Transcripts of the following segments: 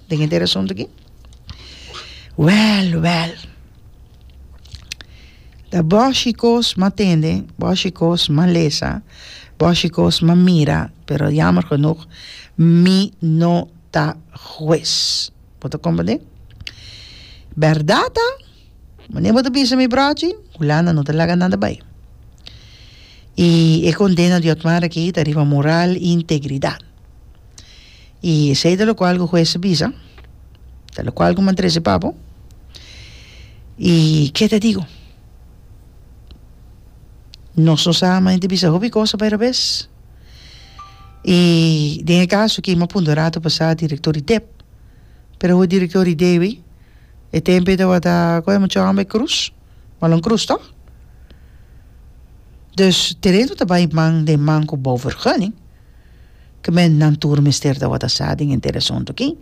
Den henter asunto aquí. Well, well. Da boshi kos ma tende, boshi kos ma lesa, boshi kos ma mira, pero jammer genoeg, mi no ta juez. Bo ta comprende? Berdad ta, wanneer bo ta bisa mi brochi, Hulanda no ta laga nada bai. Y e condena di Otmar aki ta riba moral y integridad. Y esey ta locual cu hues a bisa, ta locual cu m'a trece papo, y ke ta digo? Nos no sa m'a inti bisa hopi cosa pa e robes. Y den e caso aki m'a puntra rato pasa director di dep, pero hu director di debi, e tempe tabata, con e mucha homber cruz, balon cruz toch? Dus terreno ta bay man den man cu bouw vergunning. Kmen nan tur mester tabata sa den henter e asuntu aki.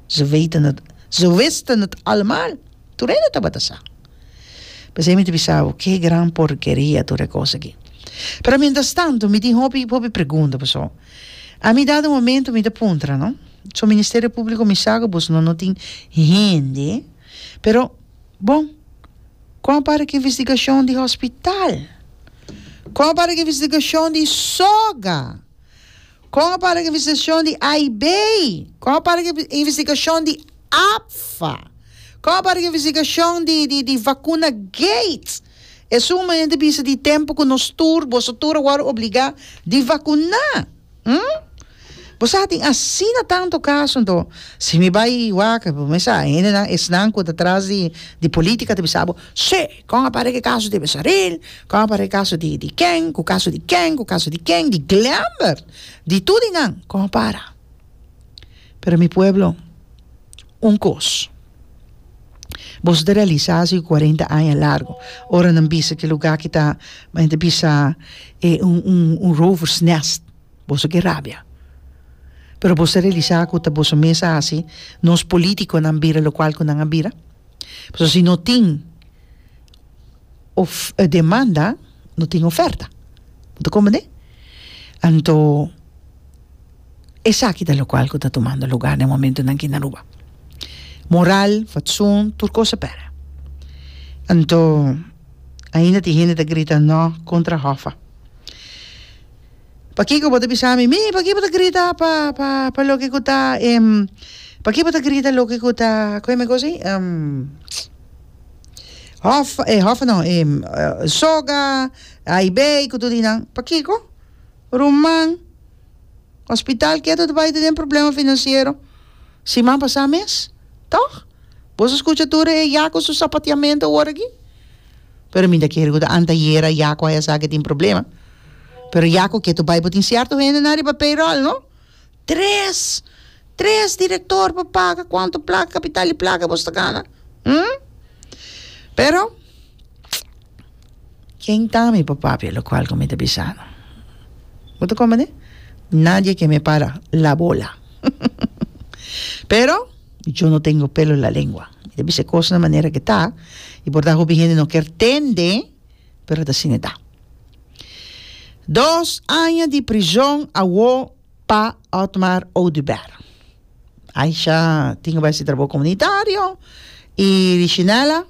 Ze weten het, ze wisten het almaal, tur hende tabata sa. P'esei mi ta bisa bo, ke gran porkeria tur e kos aki. Pero mientras tanto mi tin hopi, hopi pregunta, paso a mi dado momento mi ta puntra, no? So Ministerio Público mi sa ku bosonan no tin hende, pero. Bon, kon a para ku investigashon di hospital? Kon a para ku investigashon di soga? Kon a para ku investigashon di AIB? Kon a para ku investigashon di APFA? Kon a para ku investigashon di di di vakuna Gates? Esun mi ta bisa di tempu ku nos tur boso tur a wòrdu obligá di vakuná. Hm? Bo sa tin asina tanto caso anto si mi bay wak bo mesa hendenan esnan cu ta tras di di politica ta bisa bo sí con a para ki caso di Besaril con a para ki caso di di ken cu caso di ken cu caso di ken di Glembert di tur di nan con a para pero mi pueblo un cos. Boso ta realisá su e kuarenta aña largu. Ora nan bisa ki lugá ki ta men ta bisa e un un un rover's nest boso ke rabia. Pero boso ta realisá ku ta boso mes a hasi nos polítikonan bira lokual ku nan a bira? Pasobra si no tin of e demanda no tin oferta bo ta comprende anto esaki ta locual cu ta tumando lugar den momento nan aki na Aruba moral fatsoen tur cos a pere anto ainda tin hende ta grita no contra hoffa pakico bo ta bisa mi mi pakico bo ta grita pa pa pa loke cu ta pakico bo ta grita loke cu ta cu ta kico mi a cosa ahi Hof, eh hof no eh soga, aibei ku tur di nan, pakiko? Ruman, hospital ketu ta bai tene problema financiero siman pasa mes, tog? Boso skucha tur e ya ku su sapatiamento awor aki? Pero mi ta kere ku ta antayera Yaku a esaki tin problema, pero Yaku ketu bai bo tin sierto hende nan riba payroll no. Tres! Tres director pa paga cuanto placa, capital y placa bos ta gana? Hm? Pero, ken ta mi pa papia locual cu mi ta bisano? Bo ta comprende? Nadie ke me para la bola. Pero, yo no tengo pelo en la lengua. Mi ta bisa e cos na manera ke ta y por ta hopi hende no ker tende, pero ta asina e ta. Dos aña di prison awo. Pa Otmar Oduber. Aisha tin ku bai hasi trabou komunitario i Richinella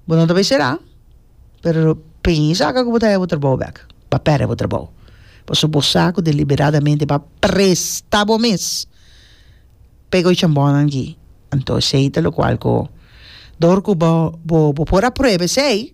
bo no ta bai será pero pensa ka ku bo ta hebe bo trabou bek pa perde bo trabou pasobra bo sa ku deliberadamente bo a presta bo mes pa e goicha bònan gi anto esei ta lokual ku dor ku bo bo por aprueba esei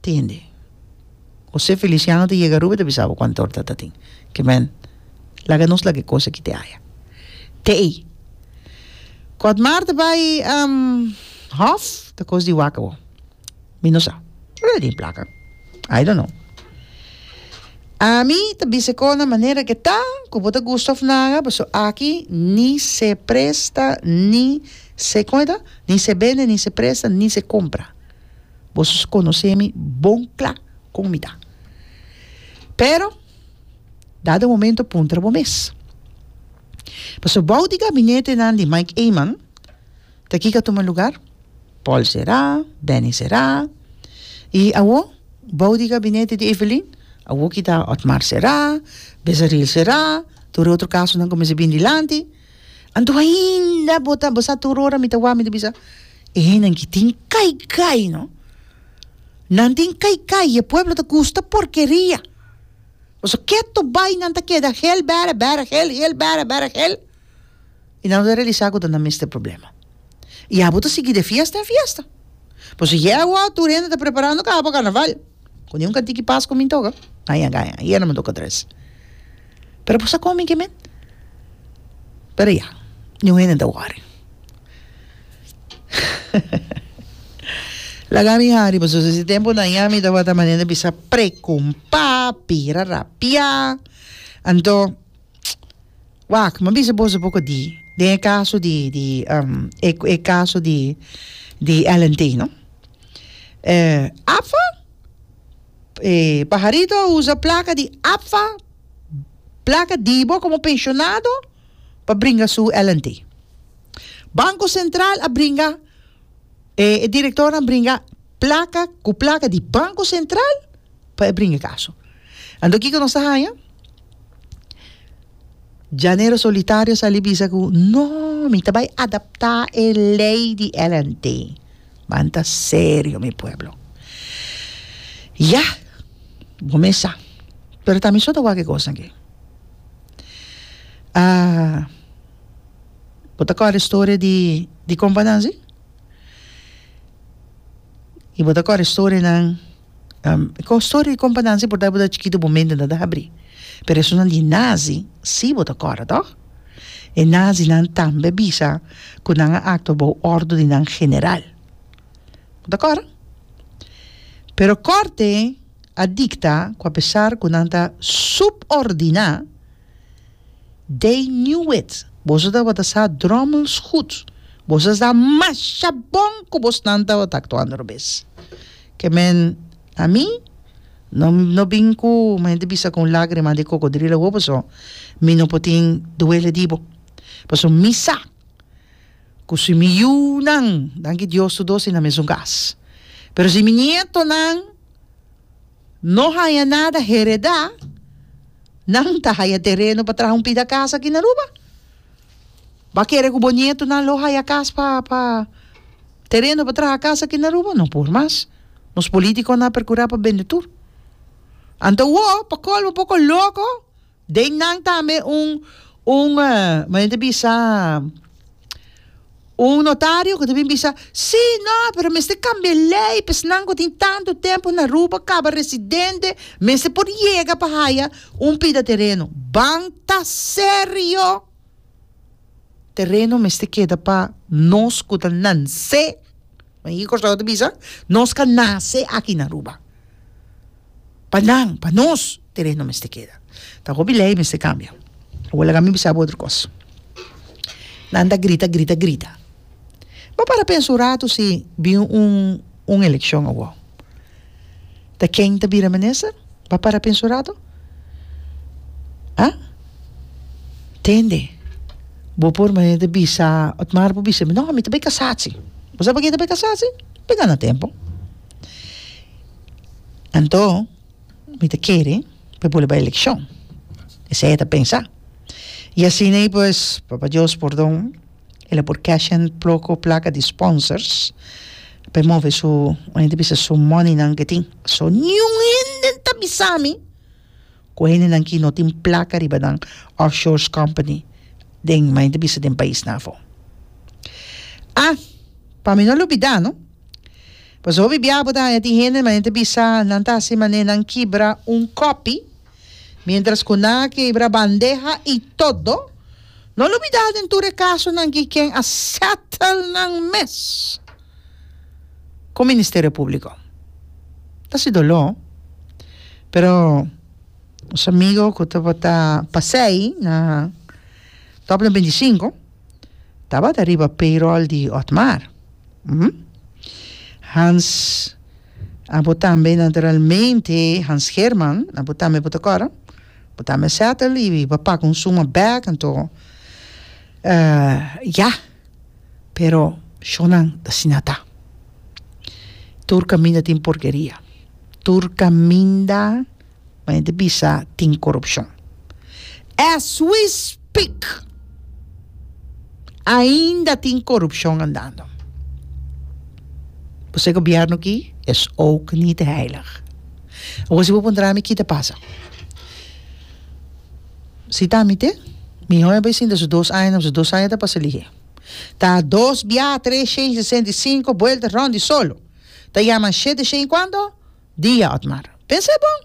tende. José Feliciano ta yega Ruben ta bisa bo cuanto torta ta tin. Ki men, laga nos laga e cos aki te haya. Te ey. Cu Admar ta bay hof ta cos di wak abo. Mi no sa. Ora a den placa. I don't know. Ami ta bisa e cos na manera ke ta cu bo ta gusta of naga paso aki ni se presta ni se, con e ta? Ni se bende ni se presta ni se compra. Boso conoce mi bon cla con mi ta. Pero, dado momento puntra bo mes. Pasobra bou di gabinetenan di Mike Eman, ta ki k'a tuma lugar? Paul Será, Benny Será, y awo bou di gabinete di Evelyn, awo ki ta Otmar Será, Bezaril Será, tur e otro casonan cuminsa bini dilanti. Anto ainda bo ta bo sa tur ora mi ta wak mi ta bisa enan ki tin kai kai no nan tin kai kai e pueblo ta gusta porkeria pasobra ke ato bai nan ta keda hel bere bere hel hel bere bere hel y nan no ta relisa ku ta nan mester problema y abo ta sigui de fiesta en fiesta pues si yeo tur hende ta preparando kaha pa carnaval. Cu niun ka tiki pas cu mi toca gaya gaya ayer no me toca tres pero por sa con mi kimen pero ya niun hende ta worry laga mi hari pasobra si ese tempo nan ya mi tabata manera bisa preocupa pira rapia anto Wak, m'a bisa boso poco di den e caso di di e caso di di LNT no APFA e pajarito a usa placa di APFA placa di bo como pensionado pa bringa su LNT Banco Central a bringa E directornan bringa placa cu placa di Banco Central pa e bringa caso. Anto kico nos ta haya? Llanero Solitario sali bisa cu no, mi ta bay adapta e ley di LNT. Manta serio mi pueblo. Ya, bo mes sa. Pero tamisoto wak e cosnan aki. Ah. Bo ta kòrda e storia di di kompanan si? I bo ta kòrda e storianan ko storia di kompanan si purtá bo ta chikitu bo mente no ta habri pero esunat di nazi si bo ta kòrda tò? E nazinan tambe a bisa ku nan a aktua bou òrdu di nan general bo ta kòrda? Pero kòrte a dikta ku apesar ku nan ta subordiná They knew it. Boso tabata sa Drommels gut. Boso a sa masha bon ku bos nan tabata aktuando robes. Ke men na mi no no bin ku mi henter bisa ku un lagrima di kokodril awo paso mi no por tin duele di bo. Paso mi sa ku si mi yu nan, danki Dios tur dos, i na mesun kas. Pero si mi nieto nan. No haya nada hereda, nan ta haya tereno pa traha un pida cas aki na Aruba. Bo kere cu bo nietonan lo haya cas pa, pa, tereno pa traha cas aki na Aruba? No por mas. Nos politiconan a percura pa bende tur. Anto wo, pa colmo, poco loco, Den nan tambe un un me enta bisa un notario ku ta bin bisa si no pero mester kambia e lei pesnan ku tin tantu tempu na Aruba kaba residente mester por yega pa haya un pida tereno ban ta serio. Tereno mester keda pa nos ku ta nansé, me i kos lo ta bisa, nos ka nase aki na Aruba. Pa nan, pa nos, tereno mester keda. Ta hopi lei mester kambia. Awor laga mi bisa bo otro kos. Nan ta grita, grita, grita. Bo para pensa un ratu si bin un elekshon awor. Ta ken ta bira minister? B'a para pensa un rato. A. Tende, bo por manera bisa, Otmar por bisa mi, no, mi ta bai kasá si. Bo sa pake ta bai kasá si? Bo ta gana tempu. Anto, mi ta kere pa bo bai elekshon. Esei e ta pensa. I asina i pues, Papa Dios pordon. El a por cash in ploco placa di sponsors pa e move su un hende bisa su money nan ke tin so niun hende ta bisa mi ku hende nan ki no tin placa riba nan offshores company den mi ta bisa den pais nan afo ah pa mi no lo bida no pasobra biaha bo ta haña tin hende nan ta bisa nan ta hasi mane nan kibra un kopi. Mientras cu nan a kebra bandeha y todo, no lo bida den tur e casonan ki ken a settle nan mes cu Ministerio Publico. Ta si dolo, pero nos amigo cu tabata pasey na Top den binti sinku tabata riba payroll di Otmar, Hans. Abo tambe naturalmente Hans Herman, abo tambe bo ta kòrda, bo tambe a sèta li i bo a paka un suma bèk anto ya, pero shònan asina ta. Tur kaminda tin porkeria, tur kaminda Mane ta bisa tin corupcion. As we speak ainda tin corupcion andando. Bo sa e gobierno aki is ook niet heilig. Awor si bo puntra mi ki ta pasa. Si ta mi te miho a bay sinta su dos aña na su dos aña ta pasa lihe. Ta dos bia tres shen sesenta y cinco buelta rond y solo ta yaman shete shen y cuanto? Dia, Otmar. Pensa e bon!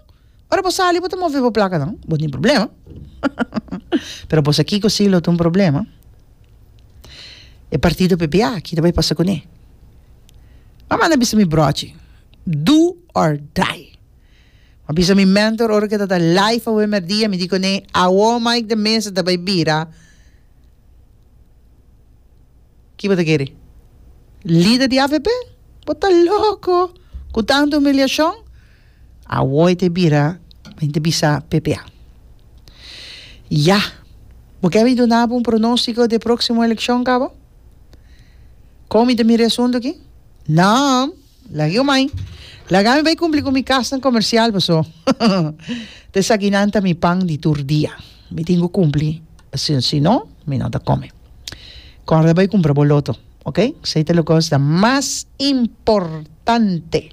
Ora bo sali bo ta move bo plaka dan, bo tin problema. Pero bo sa kiko si lo ta un problema? E partido ppa aki ta bai pasa kuné. M'a manda bisa mi brochi, do or die. M'a bisa mi mentor ora ke tabata live awe merdia, mi di kuné, Awo Mike de Meza ta bai bira. Ki bo ta kere? Lider di avp? Bo ta loko ku tantu humiliashon? Awor e ta bira men ta bisa ppa. Ya! Bo ke mi duna bo un pronostiko di e proksimo elekshon, kaba? Kon mi ta mira e asuntu aki? Nan! Lag'e omai. Lag'an mi bai kumpli ku mi kasnan komersial, paso ta esaki nan ta mi pan di tur dia. Mi tin ku kumpli, si si no mi no ta kome. Kòrda bai kumpra bo loto, oke? Esei ta loke ta mas importante.